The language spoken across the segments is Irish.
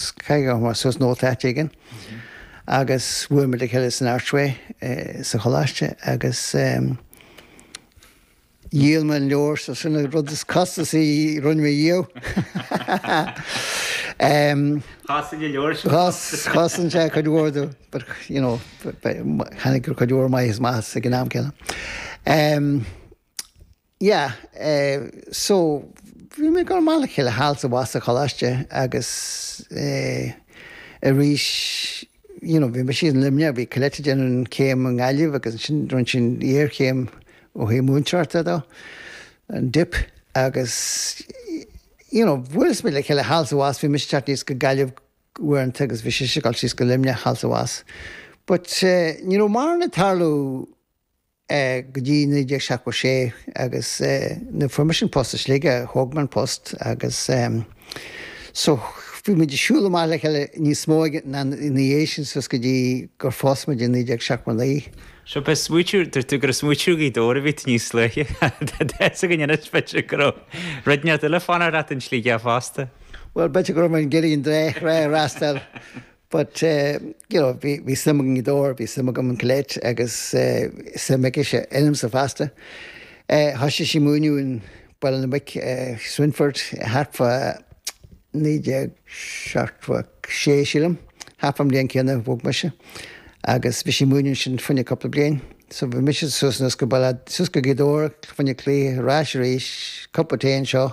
So chuir mé suas nóta áit éigin agus bhuail muid le chéile san Archway sa choláiste agus dhíol mé an leabhar, so sin an rud is costasaí a rinne mé ariamh. Chosain an leabhar sin costas? Chosain sé cuid mhór dó, but you know, tháinig cuid mhór maith as, maith as ag an am céanna. Yeah, eh, so, bhí muid ag dul amach le chéile thall is abhus sa choláiste agus, eh, arís, you know, bhí mise in Luimneach, bhí Colette ag déanamh an chéim i nGaillimh agus ansin rinne sí an iarchéim ó thaobh múinteoireachta de, an dip agus, you know, bhuail muid le chéile thall is abhus, bhí mise ag teacht aníos go Gaillimh uaireanta agus bhí sise ag dul síos go Luimneach thall is abhus. But, eh, ní raibh mórán ag tarlú. é go dtí 1976 agus nuair a fuair mise an post i Sligeach thóg mé an post agus so bhí muid ag siúl amach le chéile níos mó ag an am ina dhiaidh sin suas go dtí gur phós muid i 1979. Sea, pé smoothie, deir tú gur smoothie Ghaoth Dobhair a bhí tú níos luaithe. Tá a fhios againn anois, b'fhéidir, go raibh duine eile ag fanacht leat in Sligeach fosta. Bhuel, b'fhéidir go raibh mé ag iarraidh an dá thrá a fhreastal. but eh you know bhí suim agam in Gaoth Dobhair, bhí suim agam in Colette agus eh suim aicise ionamsa fosta. Eh thoisigh sí ag múineadh in Béal Átha na Muice, Swinford, thart fá naoi déag seachtó a sé sílim, thart fán mbliain céanna a bhog mise agus bhí sí ag múineadh ansin fá choinne cúpla bliain. So bhí mise suas anuas go Baile suas go Gaoth Dobhair, fá choinne cluichí, ar ais arís, cupa tae anseo,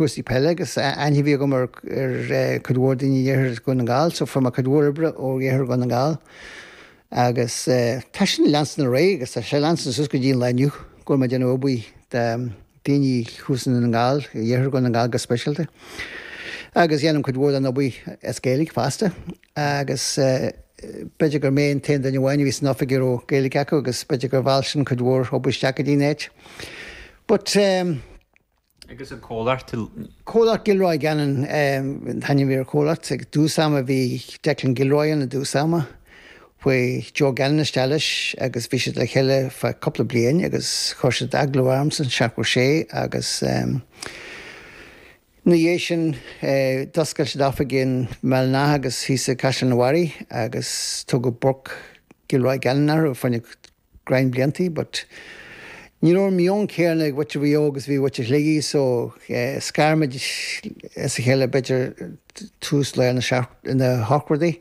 chúrsaí peile agus aithne a bhí agam ar chuid mhór daoine in iarthar Dhún na nGall, so fuair mé cuid mhór oibre ó iarthar Dhún na nGall agus tá sin ag leanstan ar aghaidh agus tá sé ag leanstan suas go dtí an lá inniu go bhfuil mé ag déanamh obair do daoine thuas i nDún na nGall, iarthar Dhún na nGall go speisialta agus déanaim cuid mhór den obair as Gaeilge fosta agus b'fhéidir gur mé an t-aon duine amháin a bhí san oifig a raibh Gaeilge acu agus b'fhéidir gur mheall sin cuid mhór obair isteach go dtí an áit but. agus an comhlacht. Comhlacht Gilroy Gannon an t-ainm ar an chomhlacht. I dtús ama bhí Declan Gilroy ann i dtús ama. Chuaigh Joe Gannon isteach leis agus bhí siad le chéile feadh cúpla bliain agus chuir siad glaoch ormsa i seachtó sé agus ina dhiaidh sin d'oscail siad oifig in mBéal an Átha agus thíos i gCaisleán an Bharraigh agus tugadh Burke Gilroy Gannon orthu. roinnt bliantaí but ní raibh an meon céanna ag mhuintir Mhaigh Eo agus a bhí ag mhuintir Shligigh so scar muid as a chéile b'fhéidir tús lár na hochtóidí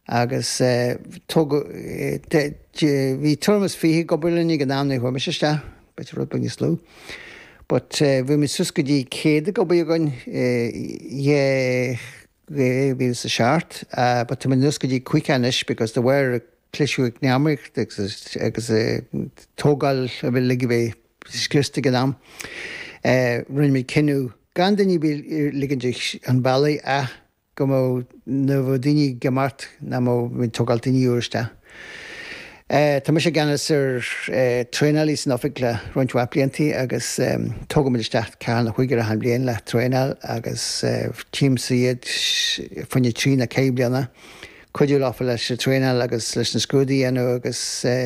agus tógadh bhí tuairim is fiche ag obair linn ag an am nuair a chuaigh mise isteach, b'fhéidir rud beag níos lú but bhí muid suas go dtí céad ag obair againn, dhá dhá mhíle is a seacht, but tá muid anuas go dtí caoga anois because de bharr an cliseadh eacnamaíochta agus tógáil a bhí uilig a bheith scriosta ag an am, rinne muid cinneadh gan daoine a bheith ag ligint chun bealaigh ach go mbeadh, nuair a bheadh daoine ag imeacht nach mbeadh muid ag tógáil daoine úra isteach. Tá mise i gceannas ar traenáil insan oifig le roinnt mhaith blianta agus tógaimid isteach ceathrar nó cúigear achan bhliain le traenáil agus tchímse iad fá choinne trí nó ceithre bliana. Cuidiú leofa leis an traenáil agus leis na scrúdaí a dhéanamh agus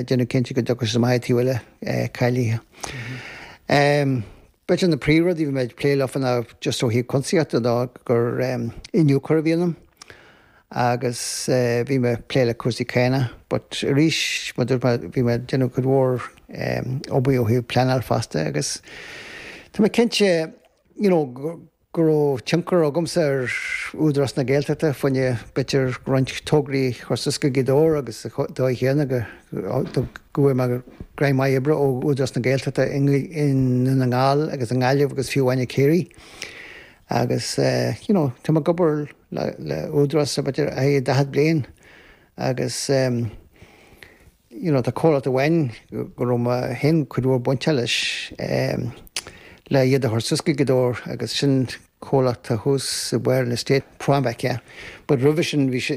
déanamh cinnte go dtiocfaidh siad amach an taobh eile cáilithe. B'fhéidir na príomhrudaí a bhí mé ag plé leo ná just ó thaobh cuntasaíochta de gur iniúchóir a bhí ionam, agus bhí mé ag plé le cúrsaí cánach but arís mar a dúirt mé bhí mé ag déanamh cuid mhór obair ó thaobh pleanáil fosta agus tá mé cinnte you know go raibh tionchar agamsa ar Údarás na Gaeltachta fá choinne b'fhéidir roinnt tograí a chur suas go Gaoth Dobhair agus sa dóigh chéanna go bhfuair mé greim maith oibre ó Údarás na Gaeltachta i nDún na nGall agus i nGaillimh agus fiú amháin i gCiarraí. Agus you know tá mé ag obair le Údarás ar feadh daichead bliain agus you know tá comhlacht amháin go raibh mé féin cuid mhór bainteach leis le iad a thabhairt suas go Gaoth Dobhair agus sin comhlacht atá thuas ag barr an estate, ProAmpac, but roimhe sin bhí sé,